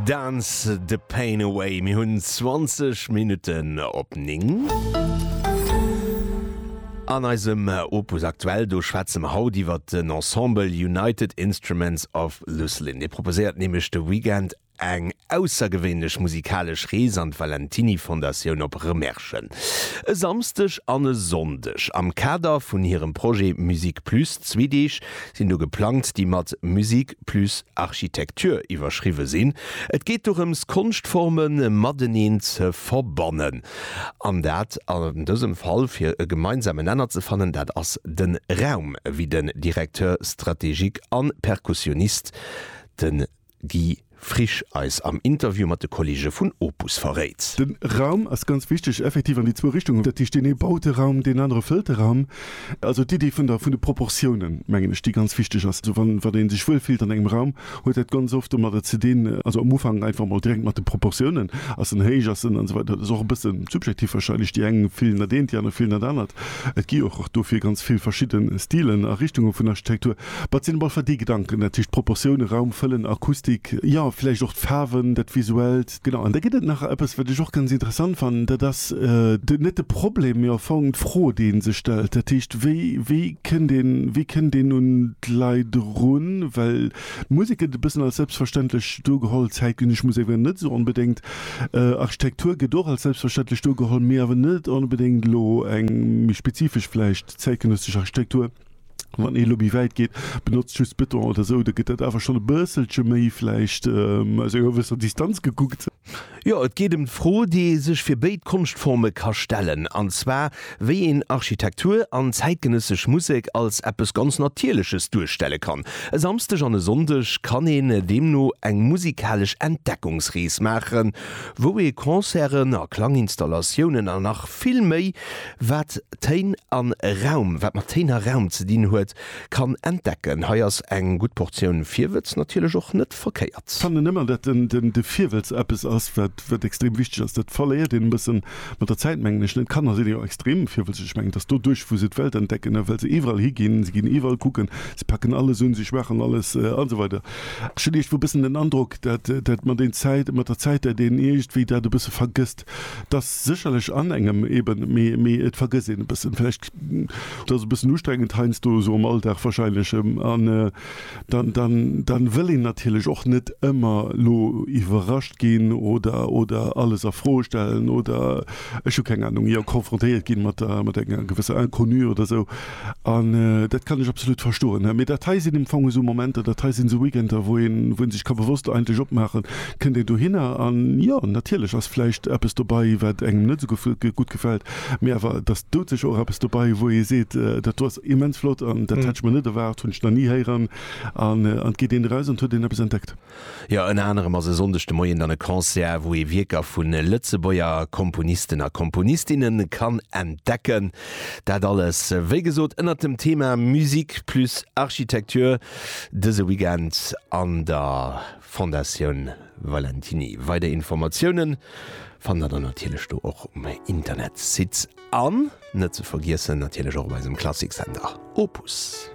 Dance the pain away. Mir hunn 20 Minutten op 9. An eisem äh, Opus Aktuell do schwätze mer haut iwwer den Ensemble United Instruments of Lucilin. Dee proposéiert nämlech de Weekend eng aussergewéinlech musikalesch Rees an d'Valentiny Fondatioun op Remerschen. E Samsdeg an e Sonndeg am Kader vun hirem Projet Musique Plus, zwee Deeg sinn do geplangt, déi mat Musique plus architecture iwwerschriwwe sinn. Et geet dorëms, Konschtforme mateneen ze verbannen, an dat an dësem Fall fir e gemeinsame Nenner ze fannen, dat ass de Raum, wéi den Directeur stratégique a Perkussionist, de Guy Frisch eis am Interview mat de Kolleege vun Opus verréit. Den Raum ass ganz wichteg, effektiv an déi zwou Richtungen. Dat heescht, deen ee baut e Raum, deen anere fëllt de Raum. Also d'Iddi vun der vun de Proportiounen, mengen ech, déi ganz wichteg ass. Also wann wann een sech wuel fillt an engem Raum, huet dat ganz oft domadder ze dinn, also am Ufank einfach mol direkt mat de Proportiounen, ass en héich, ass en an esou weider. Dat ass och e bësse subjektiv wahrscheinlech, déi eng fillen dat eent, déi aner fillen dat anert. Et gi och och dofir ganz vill verschidde Stilen a Richtunge vun Architektur. Wat sinn op alle Fall déi Gedanken, dat heescht d'Proportioune, Raum fëllen, Akustik, jo vläicht och d'Faarwen, dat Visuellt. Genau, an da gëtt et nach eppes, wat ech och ganz interessant fannen, dat ass de, net de Problem, mee au fond d'Fro, déi ee sech stellt, dat heescht, wéi, wéi kënnt een, wéi kënnt een un d'Leit erun? Well d'Musek gëtt e bëssen als selbstverständlech do geholl, zäitgenëssesch Musek awer net esou onbedéngt, Architektur gëtt och als selbstverständlech do geholl, mee awer net onbedéngt elo eng méi spezifesch vläicht zäitgenëssesch Architektur. Wann ee lo méi wäit geet, benotzt just Beton oder sou, da gëtt dat awer schonn e bësselche méi vläicht aus enger gewësser Distanz gekuckt. Jo, et geet ëm d'Fro, déi ee sech fir béid Konschtforme ka stellen, an zwar wéi een Architektur an zäitgenëssesch Musek als eppes ganz Natierleches duerstelle kann. E Samsdeg an e Sonndeg kann een deemno eng musikalesch Entdeckungsrees maachen, wou ee Concerten a Klanginstallatiounen an nach vill méi Wat Téin an Raum, wat mat Téin a Raum ze dinn huet, kann entdecken. Hei ass eng gutt Portioun Virwëtz natierlech och net verkéiert. Fannen emmer dat den de Virwëtz eppes ass wat wat extrem wichteg ass. Dat verléiert een e bëssen mat der Zäit mengen ech net. Kanner sinn jo extrem virwëtzeg. Ech mengen et ass doduerch wou se d'Welt entdecken a well se iwwerall higinn. Se ginn iwwerall kucken, se packen alles un, se schmaachen alles an esou weider. Ech hunn iergendwou e bëssen den Androck dat dat mat een Zäit mat der Zäit dat een iergendwéi dat e bësse vergësst. Respekt, dass sécherlech an engem eben, mee, mee et vergësst een e bëssen vläicht, et ass e bëssen ustrengend heiansdo esou am Alldag wahrscheinlech, an dann, dann, dann wëll een natierlech och net ëmmer elo iwwerrascht ginn oder, oder alles a Fro stellen oder, ech hu keng Anung, jo, konfrontéiert ginn mat, mat enger gewësser Inconnue oder esou. An dat kann ech absolut verstoen. Mee dat hei sinn am Fong esou Momenter, dat hei sinn esou Weekender, wou een sech ka bewosst eigentlech opmaachen, kënnt een dohinner an, jo, natierlech ass vläicht eppes dobei, wat engem net esou gutt gefält, mee awer et ass doudsécher och eppes dobei, wou ee seet, dat do ass immens flott an dat hätt ech mer net erwaart, hunn ech nach ni héieren. An et geet een eraus an et huet een eppes entdeckt. Jo, ënner anerem ass e Sonndeg de Moien dann e Concert, wou ee Wierker vu Lëtzebuerger Komponisten a Komponistinne kann entdecken. Dat alles, wéi gesot, ënnert dem Thema Musique plus Architecture, dëse Weekend an der Fondatioun Valentiny. Weider Informatioune fannt der dann natierlech do och um Internetsite an, net ze vergiessen, natierlech och op eisem Klassiksender Opus.